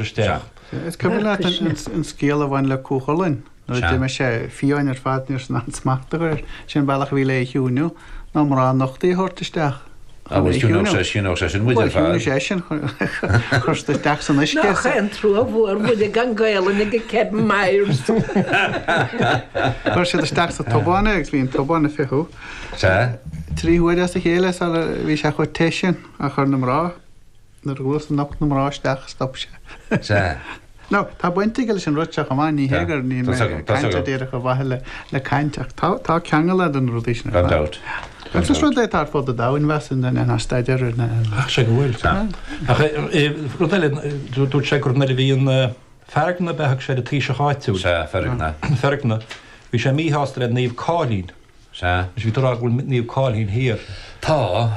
isteach. Is cuimhin leat an scéal a bhain le Cúchulainn nuair a d'imigh sé, fiáin ar fad, ní rabhthas in ann smacht a chur air. Sin an bealach a bhí le é a chiúiniú, ná mná nochtaí a thabhairt isteach chun é a chiúiniú. Ó, bhuel, chiúnódh sé sin muid ar fad. Bhuel, chiúnódh sé sin cuirtear isteach san uisce. Nach é an trua mhór muide gan Gaelainn ag Kevin Myers. Chuir siad isteach sa tobán é agus bhí an tobán ag fiuchadh. Sea. Trí huaire as a chéile sara bhí sé chomh te sin, a chuir na mná. Nuair a dhúirt a nocht na mná isteach stop sé. Sea. Nó, tá baint aige leis an rud seo chomh maith, ní hé gur níl mé ag caint díreach ar mhaithe le caint ach tá tá ceangal ann do na rudaí sin ar fad. Gan dabht. Agus is rud é atá ar fud an domhain bheas in in ann staidéar in in. Ach sé go bhfuil. Sea. Ach rud eile dúirt sé gur nuair a bhí an Feargna, bheadh sé ar an taoiseach áitiúil. Sea, Feargna. Feargna. Bhí sé míshásta le Naomh Cáilín. Sea. Is bhí tú a rá go bhfuil Naomh Cáilín thiar. Tá.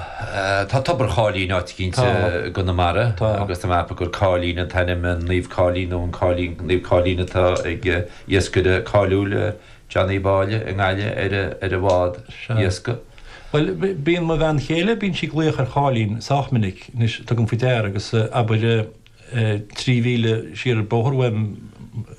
Tá Tobar Cháilín áit éicint i gConamara agus tá mé a cheapadh gur Cáilín an t-ainm an Naomh Cáilín nó an Cáilín, Naomh Cáilín atá ag iascaire cáiliúil John Uí Mháille i nGaillimh ar ar a bhád iascaigh. Bhuel bíonn mo bhean chéile, bíonn sí ag glaoch ar Cháilín sách minic. Anois tugaim faoi deara agus abair Trí mhíle siar an bóthar uaim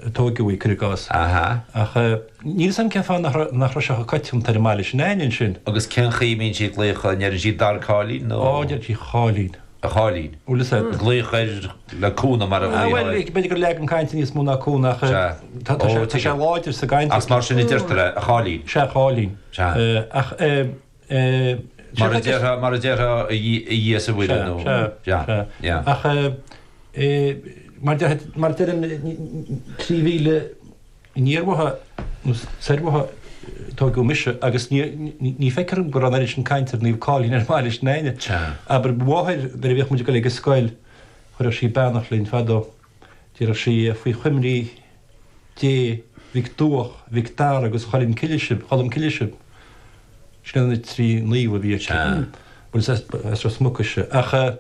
a tógadh í, cuir i gcás. Ahá. Ach níl 'fhios a'm cén fáth nach raibh, nach raibh sé chomh coitianta ar an mbaile sin a'inn ansin. Agus cén chaoi a mbíonn siad ag glaoch, an ndeireann siad Dar Cáilín nó. Ó, deireann siad a Cháilín. A Cháilín. Bhuel is é. Glaoch air le cúnamh mar a bhfuil. Bhuel, b'fhéidir gur leagan cainte níos mó ná cúnamh ach eh, tá, tá sé, tá sé láidir sa gcaint. Ach is mar sin a deirtear é, a Cháilín. Sea, Cháilín. Sea. Eh, ach eh. Mar a déarfá, mar a déarfá, a Dhia is a Mhuire nó. Sea, sea, sea. Yeah. Ach eh mar deir, mar deirim trí mhíle aniar uaithi nó soir uaithi a tógadh mise agus ní ní feictear dom go raibh an oiread sin cainte ar Naomh Cáilín ar an mbaile s'againne. Sea. Abair mo mháthair nuair a bhíodh muid ag dul ag an scoil chuireadh sí beannacht linn fadó. Déarfadh sí faoi choimrí Dé Mhic Duach, Mhic Dara agus Choilm Cille sibh, Cholm Cille sibh. Sin iad na trí naomh a bhí aici. Bhuel is as Ros Muc ise. Ach mar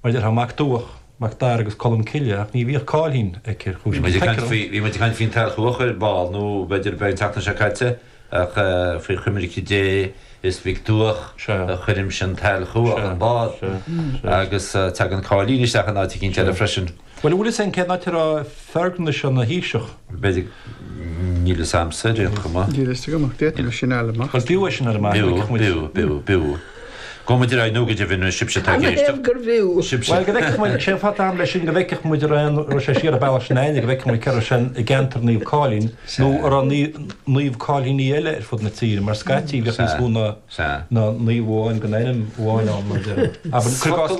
a déarfá Mac Duach, Mac Dara agus Colm Cille ach ní bhíodh cáilín aici ar chúis. Bhí muid ag caint faoin tsailchuach ar ball nó b'fhéidir beagán an tseachtain seo caite. Ach faoi choimirce Dé is Mhic Duach a chuirimse an tsailchuach an bád. Agus tagann cáilín isteach in áit eicínt eile freisin. Bhuel, an bhfuil fhios a'inn cén áit a raibh Feargna seo ina thaoiseach? B'fhéidir. Níl fhios a'msa ar aon chuma. Níl fhios agam ach d'fhéadfaimis sin a fháil amach. Bhuel, b'fhiú é sin a fháil amach. B'fhiú, b'fhiú, b'fhiú, b'fhiú. Gabhfaidh muid ar aghaidh nó go deimhin ar sibhse atá ag éisteacht. An é gurbh fhiú? Sibhse. Bhuel, go bhfeicfeadh muid. Sé an fáth atá a'm leis sin? Go bhfeicfeadh muid an raibh an, raibh sé siar an bealach sin a'inne, go bhfeicfeadh muid cé raibh sé i gceantar Naomh Cáilín nó an raibh Naomh Cáilíní eile ar fud na tíre mar scaití bhíodh níos mó ná naomh amháin den ainm amháin ann mar a déarfá. Abair, cuir i gcás,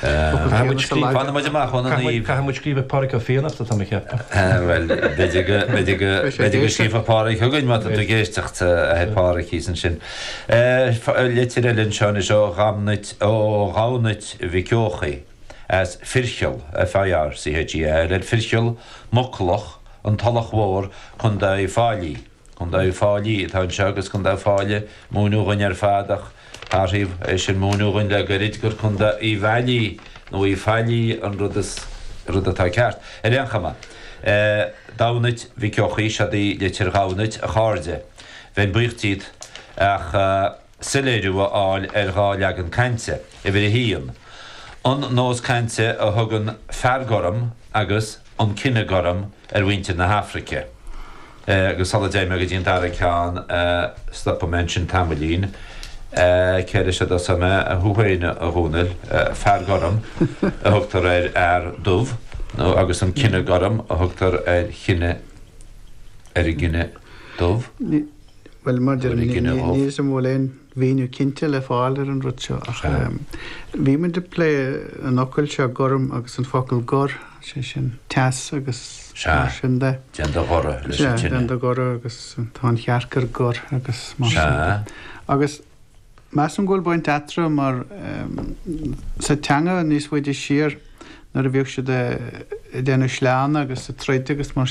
Caithfidh muid scríobh. Fanfaidh muid amach ón a naoimh. Caithfidh muid scríobh ag Pádraig Ó Fiannachta tá mé ceaptha. Bhuel b'fhéidir go scríobhfadh Pádraig chugainn má tá tú ag éisteacht a thuig Pádraig thíos ansin. Litir eile anseo anois ó Dhamhnait Mhic Eochaidh as Fircheall, FIRCHEALL, Fircheall, Muclach, An Tulach Mhór, Condae Fáilí. Condae fáilí atá anseo agus condae Fáilí múineadh dhuinn ar fad ach hathraíodh é sin múineadh dhuinn le goirid gur condae Uíbh Fhailí nó Uí Failí an rud is rud atá ceart. Ar aon chuma, Damhnait Mhic Eochaidh, seod í litir Dhamhnait, a chairde. Bheinn buíoch díot ach. soiléiriú a fháil ar dhá leagan cainte, uimhir a haon, an nós cainte a thugann 'fear gorm' agus 'an cine gorm' ar mhuintir na hAfraice, agus sula dté mé go dtí an dara ceann, stopfaidh mé ansin tamaillín. Céard é seo a dtosóidh mé, thú féin, a Dhónaill, 'fear gorm' a thugtar ar fhear dubh, nó, agus 'an cine gorm' a thugtar ar chine, ar an gcine dubh? Bhuel, mar a deir tú. Níl a fhios agam an bhfuil aon mhíniú cinnte le fáil ar an rud seo ach bhí muid ag plé an fhocail seo gorm agus an focal gor, sé sin teas agus mar sin de. Sea, déan do ghoradh leis an tine. Sea, déan do ghoradh agus tá an chearc ar gor agus mar sin de. Sea. Agus measaim go bhfuil baint eatarthu mar sa teanga níos faide siar nuair a bhíodh siad ag déanamh sleánna agus ag troid agus mar